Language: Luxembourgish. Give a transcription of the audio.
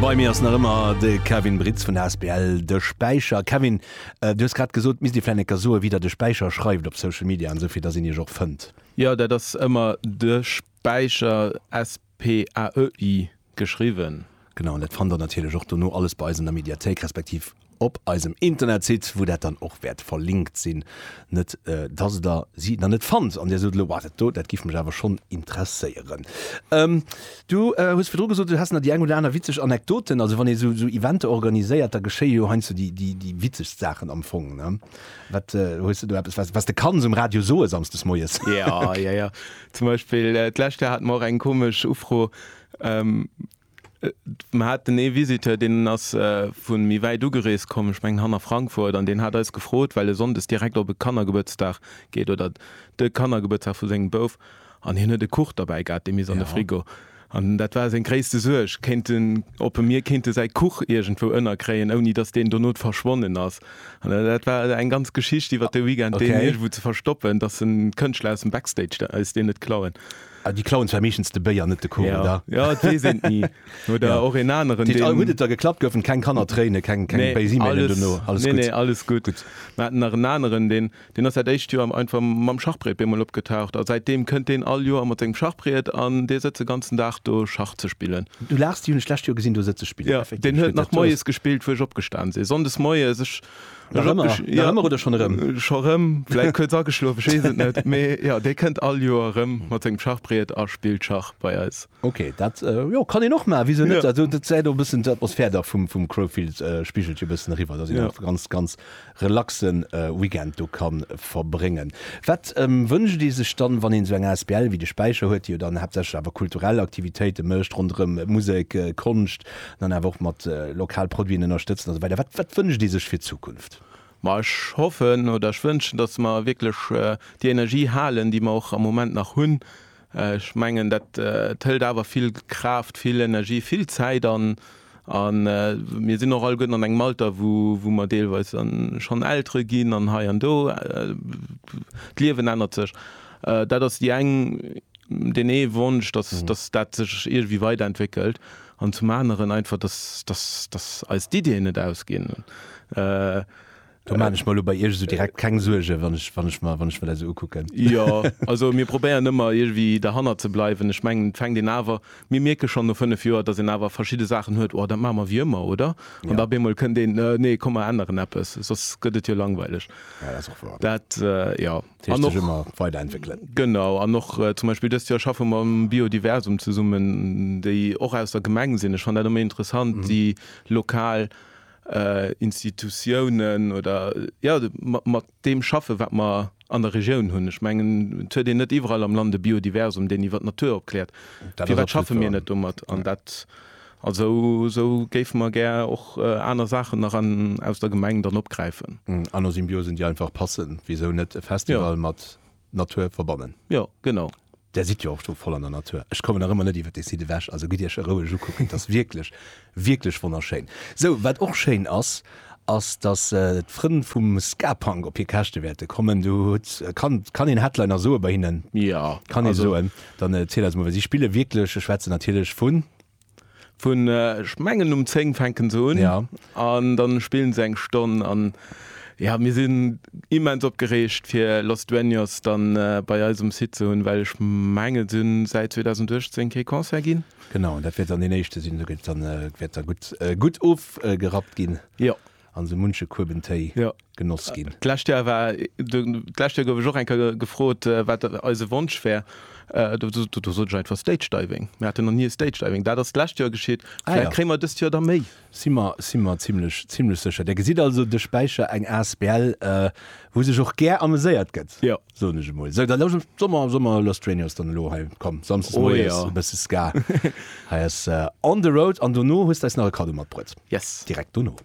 Bei mir ass nach ëmmer de Kevin Britz vun der asbl De Späicher. Kevin, äh, du hues grad gesot, misst Dir vläicht necker soen, wéi Der de Späicher schreift op Social Media an esou, fir datt een Iech och fënnt. Jo, dat ass ëmmer De Späicher, S-P-A-E-I, geschriwwen. Genau, an dat fannt Der natierlech och dono alles bei eis an der Mediathéik, respektiv Op eisem Internetsite, wou dat dann och wäert verlinkt sinn, net dass der si nach net fannt an dir sot, elo, Wa, dat do, dat giff mech awer schonn interesséieren. Du hues virdru gesot, du häss nach déi eng oder aner witzeg Anekdoten. Also wann ee sou Eventer organiséiert, da geschéie jo heiansdo déi witzegst Saachen am Fong. Wat, hues du do eppes, wat de kanns um Radio soe samsdes moies? Ja, ja, ja. Zum Beispill d'lescht Joer hate mer och eng komesch Ufro. Mer haten ee Visiteur, deen ass vu méi wäit ugereest komm, ech mengen hanner Frankfurt, an deen hat eis gefrot, well e sonndes direkt op e Kannergebuertsdag geet, oder de Kannergebuertsdag vu sengem Bouf, an hien huet e Kuch derbäi gehat, dee misst an de Frigo. An dat war seng gréisste Suerg, kéinten, ob e mir kéinte säi Kuch iergendwou ënnerkréien, ouni datt deen dono verschwonnen ass. An dat war eng ganz Geschicht iwwert de Weekend, deen iergendwou ze verstoppen, datt Kënschtler aus dem Backstage eis deen net klauen. Déi klauen zwar meeschtens de Béi an net de Kuch, oder? Jo, et weess een et ni. Oder och een aneren, deen. Dat heescht, all hutt et da geklappt, goufen keng Kannertréine, keng béis Emailen dono? Alles gutt? Nee, nee, alles gutt. Gutt. Mir haten nach en aneren, deen ass dat éischt Joer einfach mam Schachbréit bemol opgetaucht a säitdeem kënnt deen all Joer mat sengem Schachbriet an dee sëtzt de ganzen Dag do Schach ze spillen. Du laachs, déi hunn ech d'lescht Joer gesinn do sëtze spillen. Jo, deen huet nach moies gespillt, wou ech opgestan sinn. Sonndes moies. Nach ëmmer, nach ëmmer oder schonn erëm? Scho rëm, vläit kuerz ageschlof, ech weess et net. Mee jo, dee kënnt all Joer erëm mat sengem Schachbriet a spillt Schach bei eis. Ok, dat, jo, kann een och maachen, wisou net? Jo. Dat säit och e bëssen d'Atmosphär dach vum, vum Crowfield spigelt jo e bëssen eriwwer, dass een Jo. einfach ganz, ganz relaxe Weekend do ka verbréngen. Wat wënscht ee sech dann, wann een esou eng Asbl wéi de Späicher huet, déi jo dann haaptsächlech awer kulturell Aktivitéite mécht ronderëm Musek, Konscht, Dann awer och mat lokal Produiten ënnerstëtzen a sou weider. Wat wënscht Dir sech fir d'Zukunft? Ma ech hoffen oder ech wënschen, datt mer wierklech déi Energie halen, déi mer och am Moment nach hunn. Ech mengen, dat hëlt awer vill Kraaft, vill Energie, vill Zäit an. A mir sinn och alleguerten an engem Alter, wou mer deelweis schonn Eltere ginn an hei an do. D'Liewen ännert sech. Dat ass déi eng. deen ee Wonsch, dass, dass dat sech iergendwéi weiderentwéckelt an zum aneren einfach, dass, dass, dass eis d'Ideeën net ausginn. Do maachen ech mer elo bei Iech esou direkt keng Suergen, wann ech, wann ech mer, wann ech mer dat esou ukucken. Jo, also mir probéieren ëmmer iergendwéi derhannert ze bleiwen. Ech mengen, et fänkt een awer, mir mierke schonn no fënnef Joer, dass een awer verschidde Saachen huet, oh, dat maache mer wéi ëmmer, oder? An da op eemol kënnt een, nee, komm mer änneren eppes, soss gëtt et jo langweileg. Ja, dat ass och wouer. Dat, jo. An och, ëmmer weider entwéckelen. Genau, an och zum Beispill dëst Joer schaffe mer um Biodiversum zesummen, déi och aus der Gemeng sinn. Ech fannen dat ëmmer interessant, déi lokal Institutiounen oder jo mat deem schaffen, wat mer an der Regioun hunn. Ech mengen, et huet een net iwwerall am Land e Biodiversum, deen iwwer d'Natur opkläert. Firwat schaffe mir net domat? An dat. Also esou géife mer gär och aner Saachen nach an aus der Gemeng dann opgräifen. Aner Symbiosen, déi einfach passen. Wisou net e Festival mat Natur verbannen? Jo, genau. Där sidd jo och do voll an der Natur. Ech kommen nach ëmmer net iwwer dee Site ewech. Also gitt Iech e roueg ukucken. Et ass wierklech, wierklech wonnerschéin. Esou, wat och schéin ass, ass, datt d'Frënn vum Ska-Punk op hir Käschte wäerte kommen. Du hutt, kann een Headliner soe bei hinnen? Jo, kann ee soen. Dann erziel eis mol, well si spille wierklech, ech schwätze natierlech vun. Vun, ech mengen um 10 fänke se un an da spille se eng Stonn. An jo, mir sinn immens opgereegt fir Los Dueños dann bei eis um Site ze hunn, well ech mengen, se hunn säit 2018 kee Concert ginn. Genau, an dat wäert dann deen éischte sinn, do gëtt dann, wäert da gutt, gutt ofgerappt ginn. Jo. An esou munche Kueben Téi Jo. genoss ginn. D'lescht Joer war, do, d'lescht Joer gouf ech och eng Kéier gefrot, wat eise Wonsch wär. Do, do, do sot ech einfach Stage Diving. Mir haten nach ni e Stage Diving. Dat ass d'lescht Joer geschitt. Ah Vläicht ja. kréie mer dëst Joer da méi. Si mer, si mer zimlech, zimlech sécher. Där gesitt also de Späicher, eng asbl, wou sech och gär ameséiert gëtt. Jo. soen ech emol. So, dann lauscht Sommer, Sommer Lost Radio ass dann elo hei. Komm, samstes Oh moies, ja. e bësse Ska. Hei ass äh, On the Road an dono hues du eis nach e Kaddo matbruet. Yes. Direkt dono.